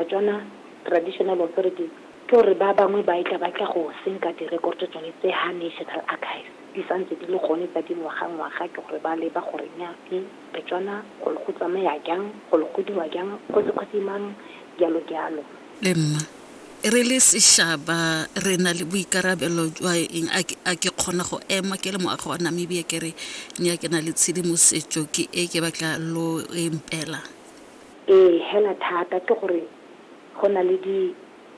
Batswana, Traditional Authorities, ke gore ba bangwe ba etla ba tla go senka direkoto tsone tse ha National Archives di sa ntse di le gone tsa dingwagangwaga ke gore ba leba gore nya e Batswana go le go tsamaya jang, go le go diwa jang, kgosi kgosi mang, jalo jalo. Le nna, re le seshaba re na le boikarabelo jwa eng? A ke, a ke kgona go ema ke le moagi wa Namibia ke re nya ke na le tshedimosetso ke e ke batla lo e mpelang? Ee hela thata ke gore go na le di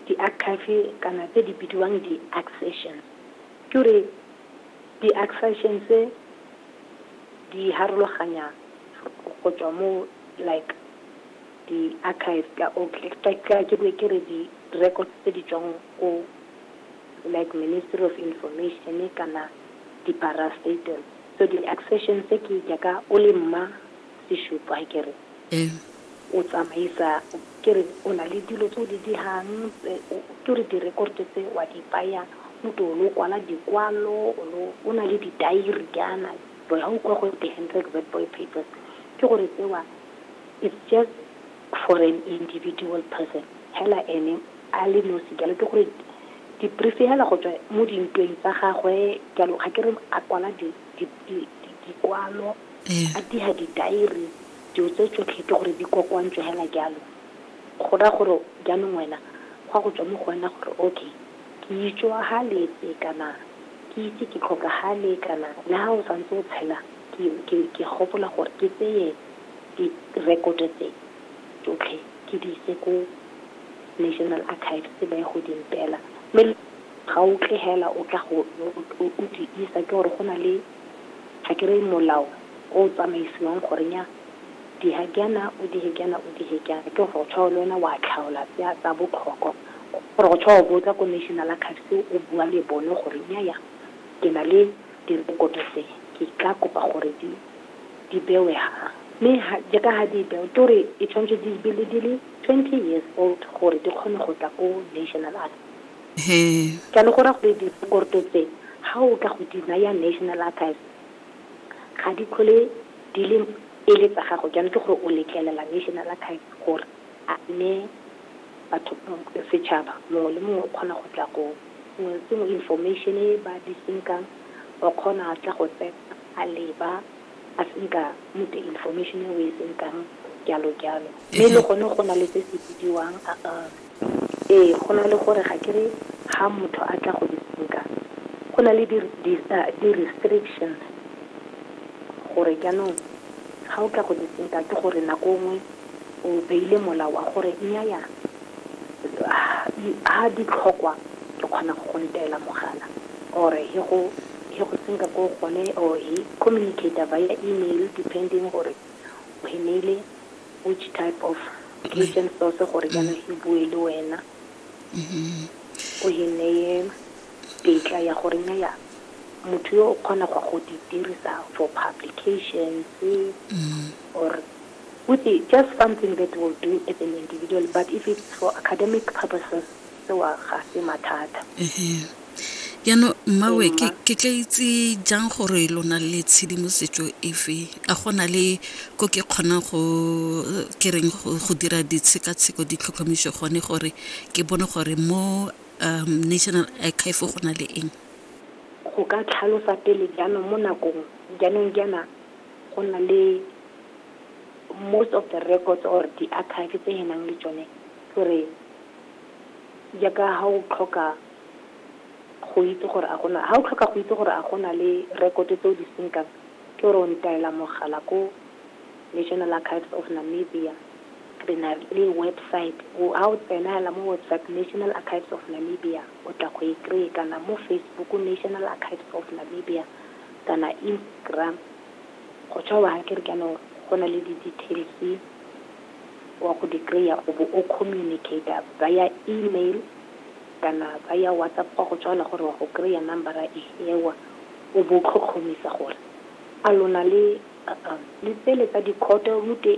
di archive kana tse di bidiwang di accessions ke gore di accessions tse di harologanya go tswa mo like di archive ka o ka ke be ke re di records tse di tswang ko like ministry of information kana di parastatal so di accessions ke jaaka o le mma e shupo ha ke re o tsamaisa ke re o na le dilo tse o di dirang ke re di-record tse wa di baya o to o lo kwala dikwalo o na le di-diary jaana jole ga o kwa go the hendrek red boy papers ke gore tsewa it's just for an individual person hela ene a le nosi jalo ke gore di-brief hela go tswa mo dintweng tsa gagwe jalo ga ke re a kwala dikwalo a dira di-diary, dilo tse tsotlhe ke gore di kokoantswe hela jalo. Go raya gore jaanong wena go a go tswa mo go wena gore okay, ke itswaghaletse kana ke ise ke tlhokagale kana le ha o santse o tshela ke gopola gore ke tseye direkoto tse tsotlhe ke di ise ko National Archives ba ye go di mpeela. Mme ga o tle hela o tla o di isa ke gore go na le ga ke re molao o tsamaisiwang gore nya diha jaana o dihe jaana o dihe jaana ke gore go tshwa le wena wa tlhaola tsa tsa botlhokwa gore go tshwa o botsa ko national archives o bua le bone gore nya ya ke na le direkoto tse ke tla kopa gore di di bewe ha mme jaaka ga di bewe ke gore e tshwanetse di be le di le twenty years old gore di kgone go tla ko national archives He. Ke a le go raya gore direkoto tse, ga o ka go di naya National Archives, ga di tlhole di le e le tsa gago. Jaanong ke gore o letlelela National Archives gore a e neye batho, setšhaba. Mongwe le mongwe o kgona go tla go, sengwe le sengwe, information e ba di senkang, o kgona tla go tsena a leba. a se nka mute information e o e sentang jalo jalo. Mme le gone go na le se se bidiwang ee go na le gore ga ke re ha motho a tla go di senka go na le di restrictions gore jaanong ga o tla go di senka ke gore nako nngwe o beile molao wa gore nnyaya ha di tlhokwa ke kgona go go nteela mogala or he go He go senka ko gone or he communicator via email depending gore o he neile which type of written source gore jaanong he bue le wena o he neye tetla ya gore nya ya motho yo o kgona go go di dirisa for publications or with it, just something that will do as an individual but if it's for academic purposes sewa ga se mathata jaanong mmawe ke ke tla itse jang gore lo na le tshedimosetso efe a go na le ko ke kgonang go ke reng go go dira ditshekatsheko ditlhotlhomiso gone gore ke bone gore mo um national archive go na le eng go ka tlhalosa pele jaanong mo nakong jaanong jaana go na le most of the records or di-archive tse e nang le tsone gore jaaka ga o tlhoka go itse gore a gona, ha o tlhoka go itse gore a gona le rekoto tse o di senkang, ke gore o ntaela mogala ko National Archives of Namibia, re na le website, ha o tsena hela mo website National Archives of Namibia, o tla go e kry-e, kana mo Facebook National Archives of Namibia, kana Instagram, go tswa wa kere jaanong go na le di-details. wa go di kry-a o bo o communicate-a via email kana via WhatsApp wa go tswala gore wa go kry-a number eo, o bo o tlhotlhomisa gore a lona le tsele tsa di-court rute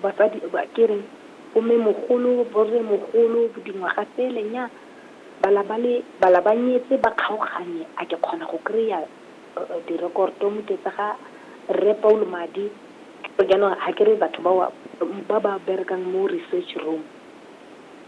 basadi ke reng bo mmemogolo, bo rremogolo, dingwaga tsele nnyaa bala ba nyetse ba kgaoganye a ke kgona go kry-a Direkoto mo ke tsa ga Rre Paulo Madi. Jaanong ga ke re batho ba ba berekang mo research room.